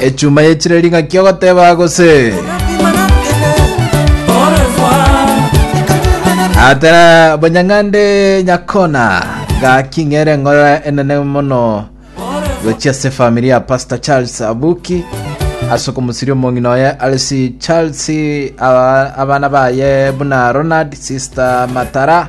echuma yechire ring'aki ogoteba gose atera bonyang'ande nyakona gaki ng'ere ng'ora enene mono gochia se familia ya pastor charles abuki ase okomusiria omong'ina oye alisi charles aba- abana baye buna ronald sister matara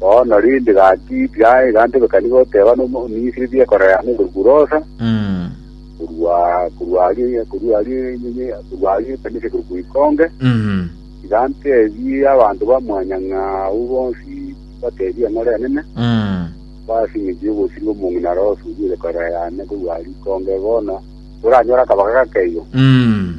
Bono rende gaki tiaye igantebeka nigo oteba n'Omomisiri biekorera noborugu bw'osa, Mm. korwa korwa arie korwa arie nyinyi korwa arie ekanisa ekero goikonge, Mhm. igantebie abanto ba mwanyang'a abwo bonsi batebie ng'a ore enene, Mm. basi ng'encho y'obosio bw'omong'ina are osurie egekorera yane korwa rikonge bono, oranyore akabaga gakeiyo. Mm.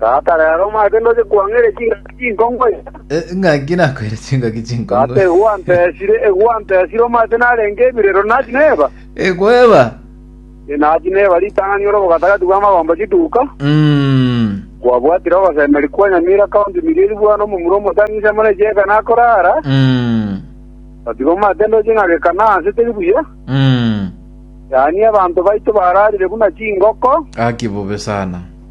Tata, rero omanyete ndoche kwang'eria chingaki chinkong'u iga. Eh, ng'aki nakoire chingaki Tata, chinkong'u. egwantesire, egwantesire, omanyete narenge ebirero nachi neba. Ekweba. E, nachi neba ritang'ani ore obogatagati bw'amagomba chituka. Mm. Kwabwatire ogosemeri kwa Nyamira County Mirieri bwane omomura omotang'isi amo ne chieka nakorara. Mm. Gatiga omanyete ndoche ng'a gekana anse teri buya. Mm. Yaani abanto baito bararire buna chingoko. Gaki bobe sana.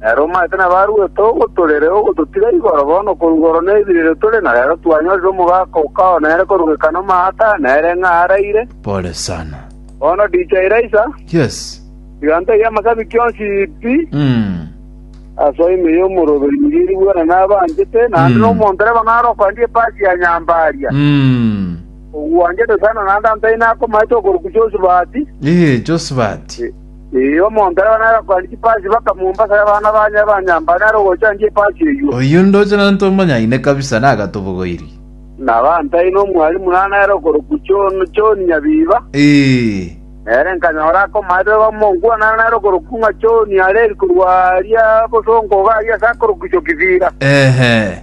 Ere omaete na barwete ogotorera ogototiga igoro bono korwa igoro na ebirerio tore, na rero twanyorire omogaka o kao nere korugeka nomaata, nere ng'a araire. Pole sana. Bono DJ Raisa, Yes. tiga ntebie amasabiki onsi pi Mm. ase ime y'omoroberi nigo eri bwena nabanchete, naende Mm. nomonto reba ng'a arokoendie epasi ya Nyambaria, Mm. ogwanchete sana naende antaine akomaete okoruku Josubati. Ee, Josephat. Ee, omonto aye onare akoania chipasi bakamombasa aye abana bane abanyambare nare ogochandia epasi eyio. Oyio ndoche nonto omonyaine kabisa na agatobogoiri. Na bantaina omwalimu naro nere okorokwa John, John Nyabiba. Ee. Nere nkanyora akomaete bamonkwa naro nere okorokwa ng'a John are eri korwa aria bosongo iga aria ase akorokwa Isokibira. Ehe.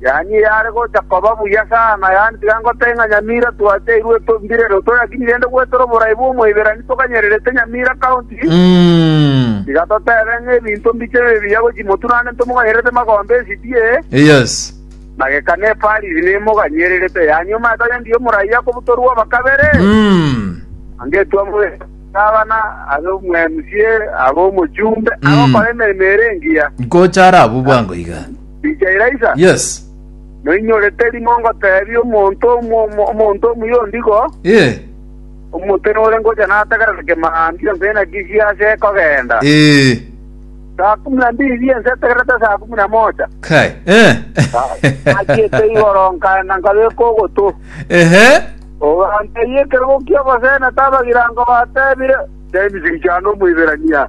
Yaani eyare gocha koba buya sana, yaani tiga ngotebie ng'a Nyamira twateirwe etombire ere otoyakini rende gweterwa oborai bw'omoiberani toganyererete Nyamira County, tiga totebe ng'a ebinto mbiche bibe biya gochi motu naende ntomoganyererete magombe esibie, Yes. na geka nepariri nemoganyererete, yaani omanyete onye ndiyo omoraia kobutorwa oba kabere, Mm. na ngetwa mobe gavana, abe omu MCA, abe omochumbe, agokora emeremo ere engiya. Ngocha ara abwo bwango iga. Richa Elaisa? Yes. Noinyorete rimo ngoteebie omonto omomo omonto omuya ondigo, Ee. Omote nore ngocha nategerere kemambia onsi naki chiase kogenda. Ee. Saa kumi na mbili ri'ense etegerete saa kumi na mocha. Kai. Eh. Nachiete igoro nkaenda nkabeka ogotu. Ehe. Ogantebia ekerogo ki'ogosena tabagirango batebire, James Richano Omoiberania.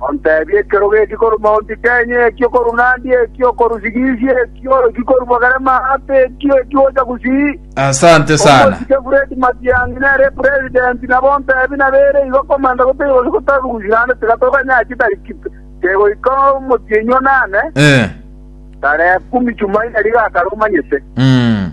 Onteebie ekerogo eki korwa Mount Kenya, eki okorwa Nandi, eki okorwa Sigisi, eki eki korwa Bogere Mahape, eki eki gocha gusii. Asante sana. Omosike Fred Matiang'i nere president, nabo onteebie nabo ere igo komenta gotaiga gose gotabe gusii naende tiga toganyare chitariki kegoika omotienyi one ane Eh. tarehe kumi Jumaine riga akare omanyete. Mm.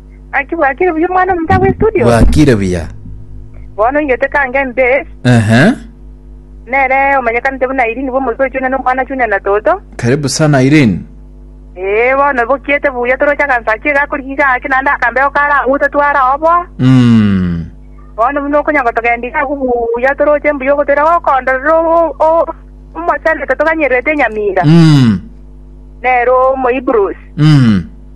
Gaki bwakire buya omwana omonto agwe studio. bwakire buya Bono ingete kange mbe ehe nere omanyekanete buna Irene bw'omoso ochune na omwana achune na toto. karibu sana irene Ee bono bokiete buya toroche agansachi iga akorigi gake naende akambeo kare agwo tatware ao boa. mm. Bono buna okonya gotogenda iga agwo buya toroche mbuya ogotoira gokondorera o- o- omochanete toganyererete enyamira mm. nere omoibros. mm.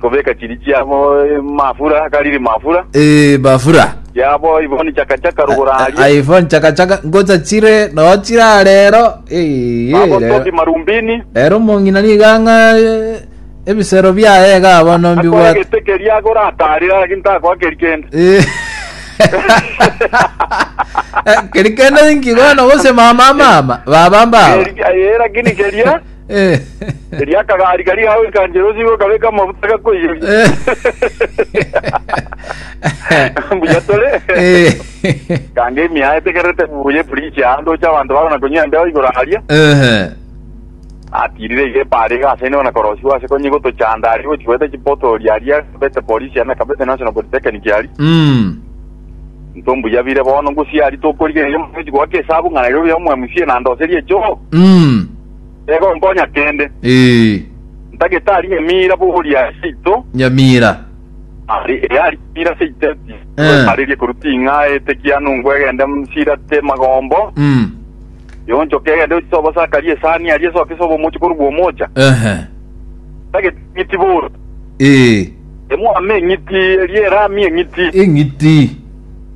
Kobeka chiri chiabo mafura, akariri mafura. Eh, mafura. Chiabo ivoni chakachaka rogoro aria. Ai fon chaka chaka ngocha chire no chira rero. Eh, Babo rero. toki marumbini. Rero mongina ni ganga ebisero biaye ga bono Akoe mbibwate. gete keria agora atarira lakini takoa keri kende. Eh. Eh, Keri kende inki bono gose mama mama baba mbaba. Keri- eh, lakini keria Erio akagaria karia gago ekanchera osibe okabeka amafuta gakoiyoria. Mbuya tore. Kanga emiao etegererete buya eprisi aa ndoche abanto bagona konywa embeo igoro aria. Atirire iga epaara iga ase nigo nakorosiwa ase konye gotochanda aria gochigweta chipotori aria akabete polisi aria nakabete National Polytechnic aria. Intwe mbuya bire bono ngosia aria tokorigereria mono gochi goaka esabu ng'a Nairobi amo mca na ndoserie choo. Nigo nkonya kende. Ee. Ntagetari Nyamira boria seito. Nyamira. Ari, ee ari Nyamira seito eti. Eh. Nkwetarerie korwa ting'a ete kiano ngwe egende nsirate magombo. Mm. Yonchoke egende yochise obosakari esani aria esoke sobe omochi korwa bwomocha. Ehe. Ntagetang'iti boro. Ee. Emwame eng'iti eria erami eng'iti. Eng'iti.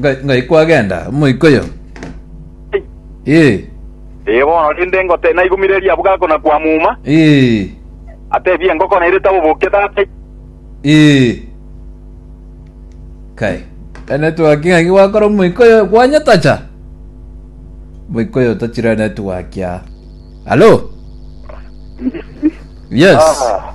Ngai- ngai kwagenda omoika oyo Ai, ee ee bono rende ngote naigumireria abwo gakona kwamuma, ee atebie engoko nairete aboboke tata ai. ee kai ene twaki ng'aki gwakora omoika oyo kwanyetacha omoika oyo tachira ene twakia alo yes Ah.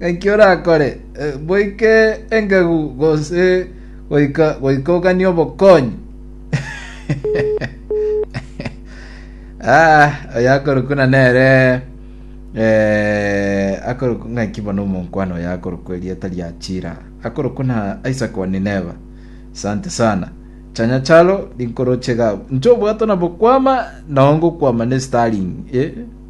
Naki orakore boike engegu gose goika goikogania obokonyi? ah, oyo akorokwa na nere eh, akorokwa ng'aki bono omonkwana oyo akorokwa erieta ria Chira akorokwa na Isaac wa Nineva. Asante sana chanya chalo rinkoroche gabo nchobwato na bokwama nao ngokwama ne Starling eh?